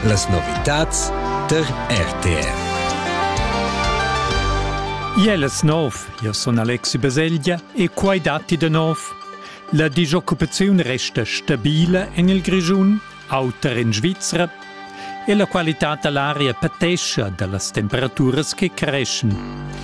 Las novitads der RTR. Iel es nov, io sun Alexi Baselgia e quai datti de nov. La disoccupaziun resta stabile en il Grischun, auter in Svizzera, e la qualità da l'aria patescha da las temperaturas che creschen.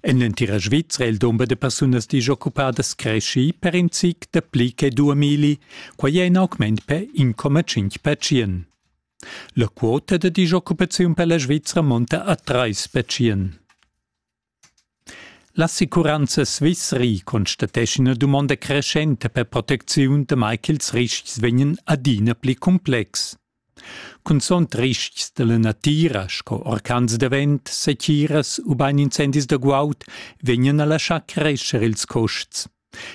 En l'entira Svizra è il dumber da persunas disoccupadas creschì per in zic dapli che duamilli, quai è in augment per 1,5 percient. La quota da disoccupaziun per la Svizra monta a 3 percient. L'assicuranza Swissery constateschia ina dumonda creschenta per protecziun, damai ch'ils riscs vegnan adina pli complexs. Cunzont ristgs dalla natira sco orcans da vent, setgiras ubain incendis da guaud vegnan alla schar crescher ils custs.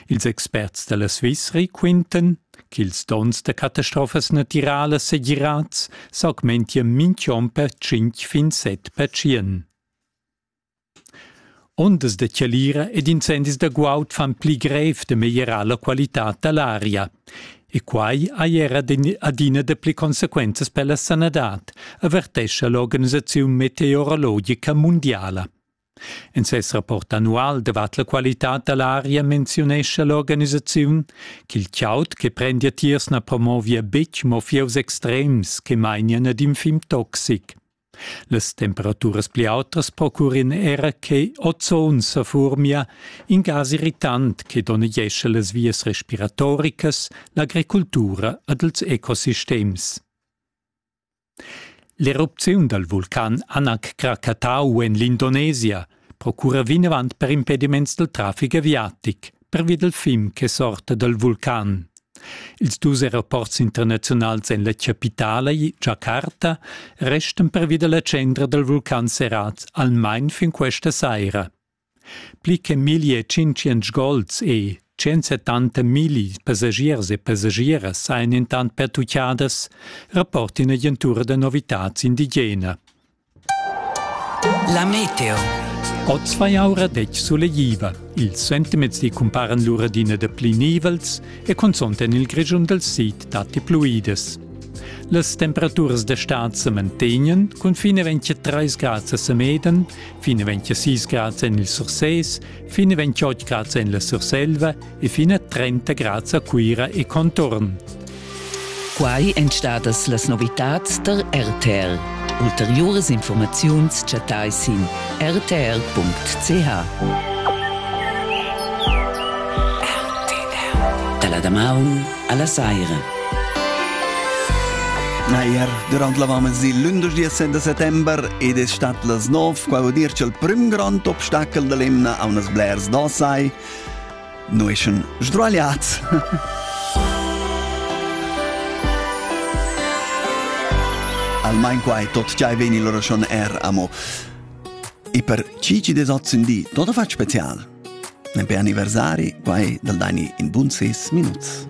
Ils experts dalla Svizri quintan ch'ils donns da catastrofas natiralas segirads s'augmentia mintg'onn per tschintg fin set pertschien. Ondas da chalira ed incendis da guaud fan pli grev da meglierar la qualitad da l'aria. E quai hai era adina dapli consequenzas per la sanadad, avertescha l'organisaziun meteorologica mundiala. En ses rapport annual davart la qualitad da l'aria menziunescha l'organisaziun ch'il chaud che prendia tiers na promovia betg mo fieus extrems che mainian ad in fim toxic. Las temperaturas pli autas procurin era che ozon sefurmia, in gas irritant che donnegescha las vias respiratoricas, l'agricultura ed ils ecosistems. L'erupziun dal vulcan Anak Krakatau en l'Indonesia procura vinavant per impediments dal traffic aviatic, pervi dal fim che sorta dal vulcan. Ils dus aeroports internaziunals en la chapitala, Jakarta, restan pervi da la tschendra dal vulcan serrads almain fin questa saira. Pli che 1500 gols e 170 migli passagiers e passagieras sajan intant pertucchadas, rapporta ina agentura da novitads indigena. La meteo. Oz vai aura detg sulegliva. Ils sentiments di cumparan lur adina da pli nivels e cunzont en il Grischun dal sid datti pluidas. Las temperaturas da stad se mantegnan cun fine 23 grads a Semeden, fine 26 grads en il Surses, fine 28 grads en la Surselva e fin a 30 grads a Cuira e contorn. Quai èn stadas las novitads tar RTL. Ulteriuras informaziuns chattai sin rtl.ch. Dalla damaun alla saira. Nair, durant l'avant il l'11 de settembre ed è stat las 9 qua dir il prim grand obstacol dell'emna a unas blers d'ossai Noeschen sdragliats. Almain quai tot giai veni lora schon er amo. E per chi ci desozzin di, tot a fac special. Men per anniversari, quai dal dani in bun 6 minuts.